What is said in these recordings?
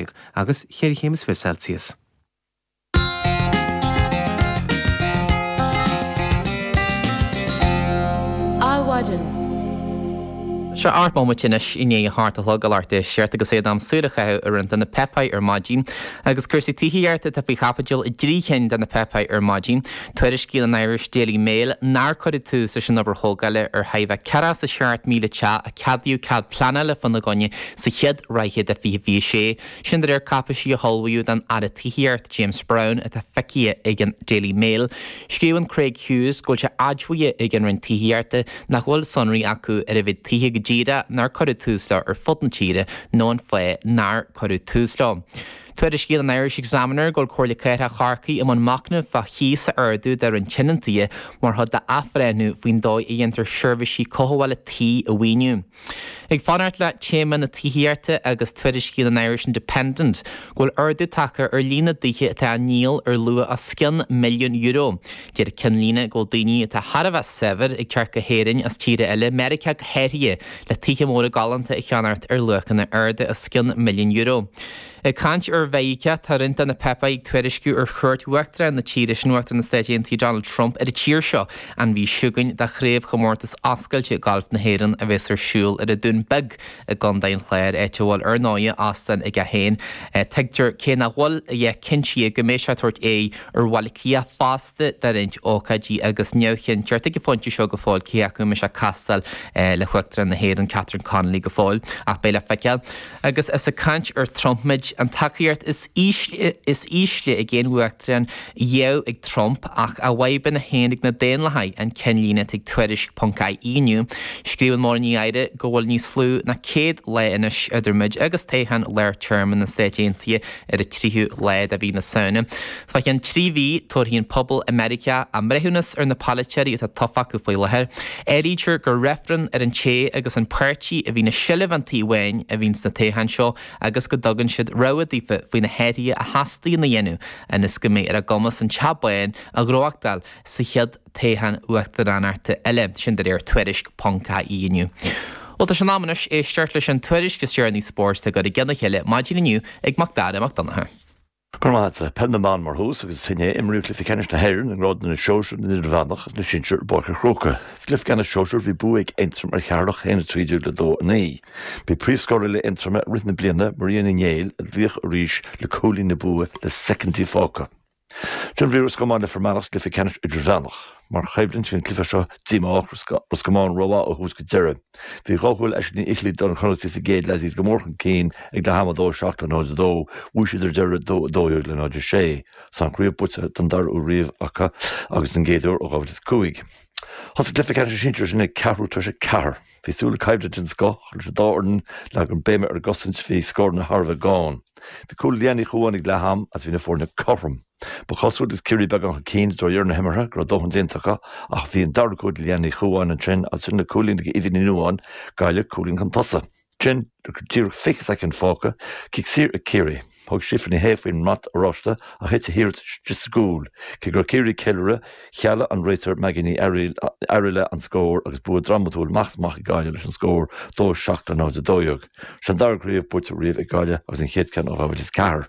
Celsius agus ceithre chéim is fiche Celsius. Adhmhaidin. Seo ocht mbomaite anois i ndiaidh a hocht a chlog leath tar éis a hocht agus é in am súil a chaitheamh ar roinnt de na páipéir ar maidin. Agus cúrsaí tithíochta atá faoi chaibidil i dtrí chinn de na páipéir ar maidin. Tuairiscíonn an Irish Daily Mail nár cuireadh tús leis an obair thógála ar chóir a bheith 47 míle teach a ceadaíodh cead pleanála fána gcoinne Sa chéad ráithe de 2026, sin de réir cáipéisí a hullmhaíodh don Aire Tithíochta James Browne atá feicthe ag an Daily Mail, scríobhann Craig Hughes go bhfuil sé admhaithe ag an Roinn Tithíochta nach bhfuil sonraí acu ar an mhéid tithe go díreach nár cuireadh tús leo ar fud na tíre nó an fáth nár cuireadh tús leo. Tuairiscíonn an Irish Examiner go bhfuil Comhairle Cathrach Chorcaí i mbun machnaimh fá chíos a ardú do roinnt tionóntaithe mar chuid d'athbhreithniú faoin dóigh a dhéantar seirbhísí cothabhála tí a mhaoiniú. Ag fanacht le téama na tithíochta agus tuairiscíonn an Irish Independent go bhfuil ardú tagtha ar líon na dtithe atá á ndíol ar luach os cionn milliún euro. Deir an cinnlíne go bhfuil daoine atá thar a bheith saibhir ag teacht go hÉirinn as tíortha eile, Meiriceá go háirithe, le tithe móra galánta a cheannacht ar luachanna arda os cionn milliún euro. Ag caint ar Mheiriceá, tá roinnt de na páipéir ag tuairisciú ar chuairt Uachtarán na tíre sin, Uachtarán na Stáit Aontaithe Donald Trump, ar an tír seo an mhí seo chugainn do Chraobhchomórtas Oscailte Gailf na hÉireann a bhéas ar siúl ar an Dún Beag i gContae an Chláir, áit a bhfuil, ar ndóighe, óstán aige féin. Tuigtear, cé nach bhfuil a dhath cinnte, go mbeidh sé ag tabhairt aghaidh ar Bhaile Átha Cliath fosta do roinnt ócáidí agus neamhchinnteacht ag an phointe seo go fóill cé acu an mbeidh sé ag castáil le hUachtarán na hÉireann, Catherine Connolly, go fóill. Ach beidh le feiceáil. agus is ag caint ar Trump muid, an tacaíocht is ísle ag aon uachtarán riamh ag Trump ach a bhfadhbanna féin ag na Daonlathaigh, an cinnlíne ag Tuairisc. ie inniu, scríobhann Máirín Ní Ghadhra go bhfuil níos lú ná 100 lá anois idir muid agus toghcháin lár téarma na Stáit Aontaithe ar an 3ú lá de mhí na Samhna. I gceann trí mhí, tabharfaidh an pobal i Meiriceá a mbreithiúnas ar na polaiteoirí atá tofa acu faoi láthair. Áirítear gur reifreann ar an té agus an páirtí a bhíonn i seilbh an tí bháin a bhíonn sna toghcháin seo agus go dtugann siad rabhadh daofa faoi na hathruithe a theastaíonn a dhéanamh ionas go mbeidh ar a gcumas an teach bán a ghnóthachtáil sa chéad toghchán uachtaránachta eile, sin de réir Tuairisc. ie inniu. Bhuel, tá sé in am anois éisteacht leis an tuairisc is deireanaí spóirt a cuireadh i gceann a chéile maidin inniu ag Macdara Mac Donncha. Go raibh maith agat. Peil na mBan mar thús agus is inné a imríodh Cluichí Ceannais na hÉireann i ngrád na Sóisear, na nIdirmheánach agus na Sinsear i bPáirc an Chrócaigh. Sa gCluiche Ceannais Sóisear bhí bua ag Aontroim ar Cheatharlach 1, 13 le 2, 9. B'í príomhscórálaí Aontroma i rith na bliana, Maria Ní Néill, an laoch arís le cúilín na bua le soicindí fágtha. Ansin bhí Ros Comáin le Fear Manach sa gCluiche Ceannais Idirmheánach. Mar choimhlint bhí an cluiche seo díomách, Ros Comáin rómhaith ó thús go deireadh. Bhí dhá chúl ag Aisling Ní Fhicheallaigh do na Connachtaigh sa gcéad leath is iad go mór chun cinn ag leath ama, 2 7 le 0 2. Bhuaigh siad ar deireadh 2 12 le 0 6. Is an chraobh buaite don dara uair riamh acu agus den gcéad uair ó 2005. Thosaigh cluiche ceannais na sinsear sin ag ceathrú tar éis a ceathair. Bhí súil le coimhlint den scoth idir an dá fhoireann, leagadh béim ar an gcosaint, bhí scóranna thar a bheith gann. Bhí cúl ag Leanne Ní Chuáin ag leath ama agus bhí na foirne cothrom. Ba chosúil agus Ciarraí beagán chun cinn i dtreo dheireadh na himeartha go raibh dóthain déanta acu ach bhí an dara cúl ag Leanne Ní Chuáin ansin agus ansin le cúilín ag Eva Ní Nuadháin, Gaillimh, cúilín chun tosaigh. Ansin, nuair díreach 20 soicind fágtha, cic saor ag Ciarraí. Thug Síofra Ní Shé faoin mbrat oráiste ach thit a hiarracht isteach sa gcúl. Cé go raibh Ciarraí ag ceiliúradh, chealaigh an réiteoir Maggie Ní Fhearaile an scór agus bua drámatúil amach is amach ag Gaillimh leis an scór 2 7 le 0 12. Sin an dara craobh buaite riamh ag Gaillimh agus an chéad cheann ó 2004.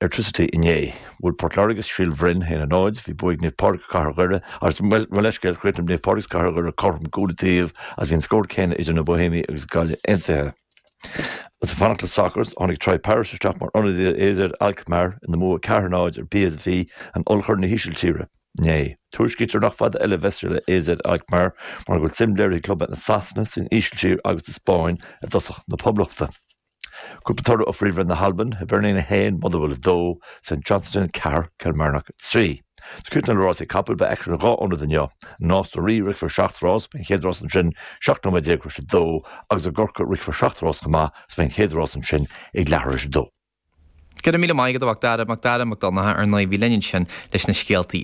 airtricity inné. Bhuaigh Port Láirge ar Shíol Bhroin 1-0. Bhí bua ag Naomh Pádraig is Cathair Dhoire agus mo leithscéal, chríochnaigh Naomh Pádraig agus Cathair Dhoire cothrom cúl an taobh agus bhí an scór céanna idir na Bohemiaigh agus Gaillimh Aontaithe. Is ag fanacht le sacar, tháinig Troy Parrott isteach mar ionadaí ar AZ Alkmaar ina mbua 4-0 ar PSV, in Ollchorn na hÍsiltíre, inné. Tuairiscítear nach fada eile a bheas sé le AZ Alkmaar mar go bhfuil suim léirithe ag clubanna i Sasana, san Ísiltír agus sa Spáinn i dtosaí na Poblachta. Cúpla toradh ó Phríomhroinn na hAlban, Hibernian 1, Motherwell 2, St Johnstone 4, Kilmarnock 3. Is ag críochnú le rásaí capall beidh aicsean in dhá ionad inniu, i Nás na Rí rithfear seacht rás, beidh an chéad rás ansin 17 nóiméad tar éis a dó, agus i gCorcaigh rithfear seacht rás chomh maith is beidh an chéad rás ansin ag leathuair tar éis a dó. Go raibh míle maith agat a Mhacdara, Macdara Mac Donncha, ar ndóigh bhí linn ansin leis na scéaltaí.